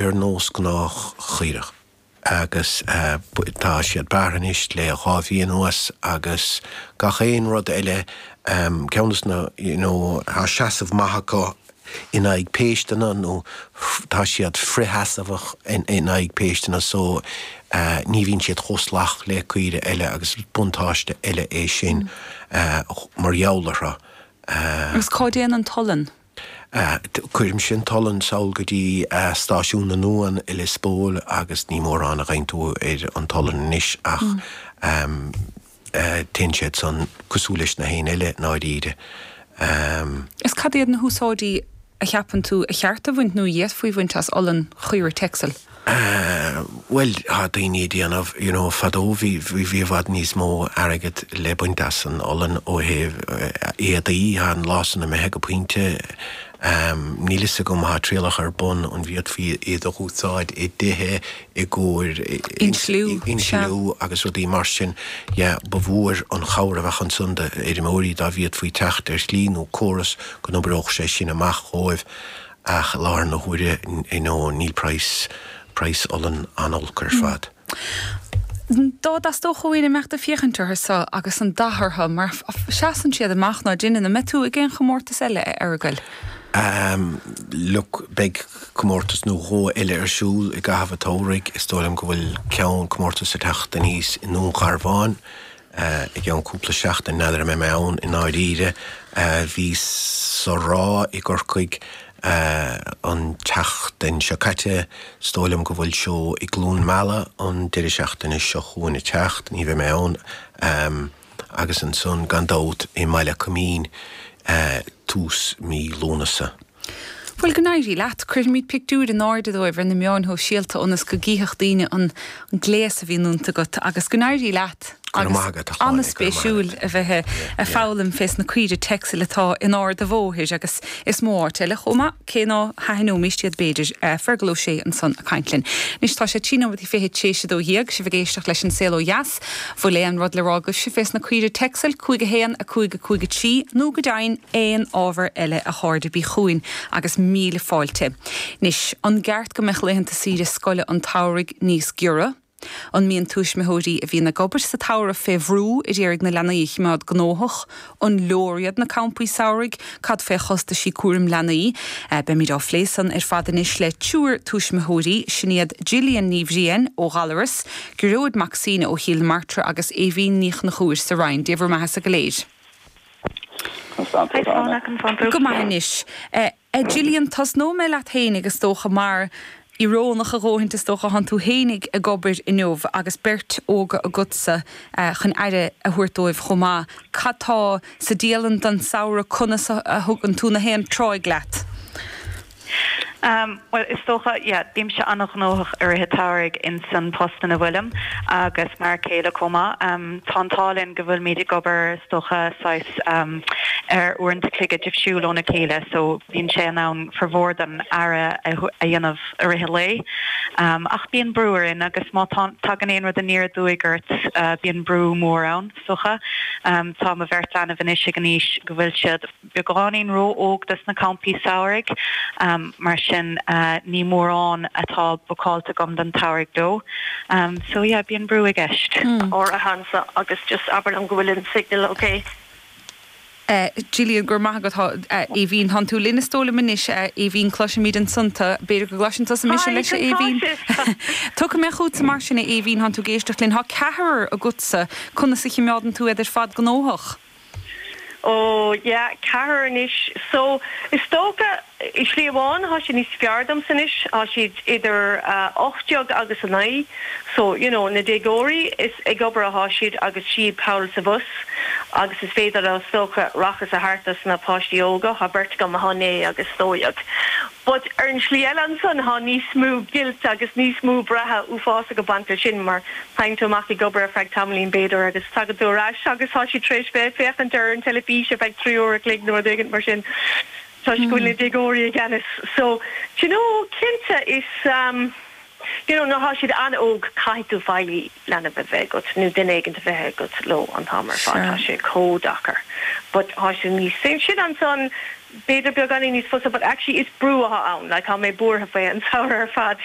ar nós gnách caoirigh. Agus tá siad bearrtha anois le dhá mhí anuas agus gach aon rud eile, ceann de na, you know, tá seasamh maith acu in aghaidh péisteanna nó tá siad frithsheasamhach in aghaidh péisteanna so ní bhíonn siad chomh salach le caoirigh eile agus is buntáiste eile é sin mar gheall orthu. Agus cá dtéann an t-olann? Cuirimse an t-olann sall go dtí stáisiún na n-uan i Lios Póil agus ní mórán a gheibheann tú ar an t-olann anois ach téann siad san cosúil leis na huain eile i ndáiríre. Is cad iad na húsáidí a cheapann tú ba cheart a bhaint nó a d'fhéadfaí bhaint as olann Chaoirigh Texel? Bhuel, tá daoine ag déanamh, you know, fadó bhí, bhí, bhí i bhfad níos mó airgead le baint as an olann ó thaobh éadaí, tá an lá san imithe go pointe, níl 'fhios agam, tá trialacha ar bun an bhféadfaí iad a úsáid i dtithe i gcomhair insliú agus rudaí mar sin, yeah, ba mhór an chabhair a bheadh ansan d'fheirmeoirí dá bhféadfaí teacht ar shlí nó córas go n-oibreodh sé sin amach dhóibh. Ach i láthair na huaire, no, níl price, price olann an-olc ar fad. Dá dteastódh ó éinne imeacht ag féachaint orthu so agus an dath orthu mar a seasann siad amach, ní haon ionadh, an mbeidh tú ag aon chomórtas eile, a Fheargail? Look, beidh comórtas nó dhó eile ar siúl i gcaitheamh an tsamhraidh. Is dóigh liom go bhfuil ceann, comórtas ag teacht aníos i nDún Garbhán I gceann cúpla seachtain, n'fheadar an mbeidh mé ann i ndáiríre. Bhíos sa Ráth i gCorcaigh an tseachtain seo caite. Is dóigh liom go bhfuil seó i gCluain Meala an deireadh seachtaine seo chugainn ag teacht, ní bheidh mé ann. Agus ansan, gan dabht, i mBaile Coimín tús mí Lúnasa. Bhuel, go n-éirí leat. Cuirfimid pictiúir in airde díobh ar na meáin shóisialta ionas go gcífeadh daoine an gléas a bhíonn iontu agat. Agus go n-éirí leat. Agus an-spéisiúil a bheith ag foghlaim fés na caoirigh Texel atá in Ard a' Bhóthair agus is mó áit eile chomh maith, cé ná haithneoimíst iad b'fhéidir. Fergal Ó Sé ansan a' caint linn. Anois tá sé trí nóiméad i fiche tar éis a dó dhéag. Sibh ag éisteacht leis An Saol Ó Dheas. Bhfuil aon rud le rá agaibhse fés na caoirigh Texel 5 1 5 5 3 nó go deimhin aon ábhar eile a chairde bígí chugainn agus míle fáilte. Anois, an gceart go mbeadh laethanta saoire scoile an tsamhraidh níos giorra? An mbíonn tuismitheoirí a bhíonn ag obair sa tsamhradh fé bhrú ad iarraidh na leanaí a chimeád gnóthach An leor iad na campaí samhraidh? Cad faoi chostaisí cúraim leanaí? Beimid á phlé san ar fad anois le triúr tuismitheoirí, sin iad Gillian Ní Bhriain ó Ghallaras, Gearóid Mac Suibhne ó Chill na Martra agus Aoibhín Ní Chonchúir sa Rinn. Dia bhur mbeatha sa go léir. Go raibh maith agat. A Gillian, tosnóidh mé leat fhéinig, is dócha, mar íorónach a dhóthaint, is dócha, thánn tú fhéinig ag obair inniu agus beirt óga agatsa chun aire a thabhairt dóibh chomh maith. Cad tá sa dialann don samhradh? Conas a thugann tú an dá thráigh leat? Bhuel, is dócha, yeah, bímse an-ghnóthach i rith an tsamhraidh ins an post ina bhfuilim, agus m'fhear céile chomh maith. Tá an t-ádh linn go bhfuilimid ag obair, is dócha, saghas, ar uaireanta chloige difriúil óna chéile, so bíonn sé in ann formhór den aire a dhéanamh i rith an lae. Ach bíonn brú orainn agus má thagann aon rud aniar aduaidh ort, bíonn brú mór ann, is dócha. Tá mo bheirt leanbh anois ag an aois go bhfuil siad. beagáinín ró-óg dos na campaí samhraidh, mar sin ní mórán atá bookáilte agam don tsamhraidh dóibh. So yeah, bíonn brú i gceist. Gillian, go raibh maith agat. Aoibhín, Thánn tú linn is dóigh liom anois. Aoibhín, Cloisimid ansan tu. B'fhéidir go gcloiseann tusa mise leis, a Aoibhín? Tiocfaidh mé chughatsa mar sin, a Aoibhín, thánn tú ag éisteacht linn. Tá ceathrar agatsa. Conas a chimeádann tú iad ar fad gnóthach? Ó, yeah, ceathrar anois. So, is dócha, i slí amháin, tá sé níos fearr domsa anois, tá siad idir a hocht déag agus a naoi, so, you know, na déagóirí, is ag obair atá siad agus siab thall is abhus agus is féidir leo, is dócha, aireachas a thabhairt dos na páistí óga, tá beirt agam, tá naoi agus dó dhéag. But ar an slí eile ansan, thá níos mó guilt agus níos mó braith uafásach ag baint leis sin mar téann tú amach ag obair ar feadh tamaillín, b'fhéidir, agus tagann tú ar ais agus thá siad tar éis bheith ag féachaint ar an teilifís ar feadh trí uair a chloig nó rud éigint mar sin toisc go bhfuil na déagóirí i gceannas. So, d'you know, cinnte is um d'you know nuair thá siad an-óg caithfidh tú feighlí leanbh a bheith agat nó duine éigint a bheith agat leo an t-am ar fad, thá sé chomh deacair. But thá sé níos sin ansan, b'fhéidir beagáinín níos fusa but actually is brú atá ann like tá mé buartha faoi an samhradh ar fad.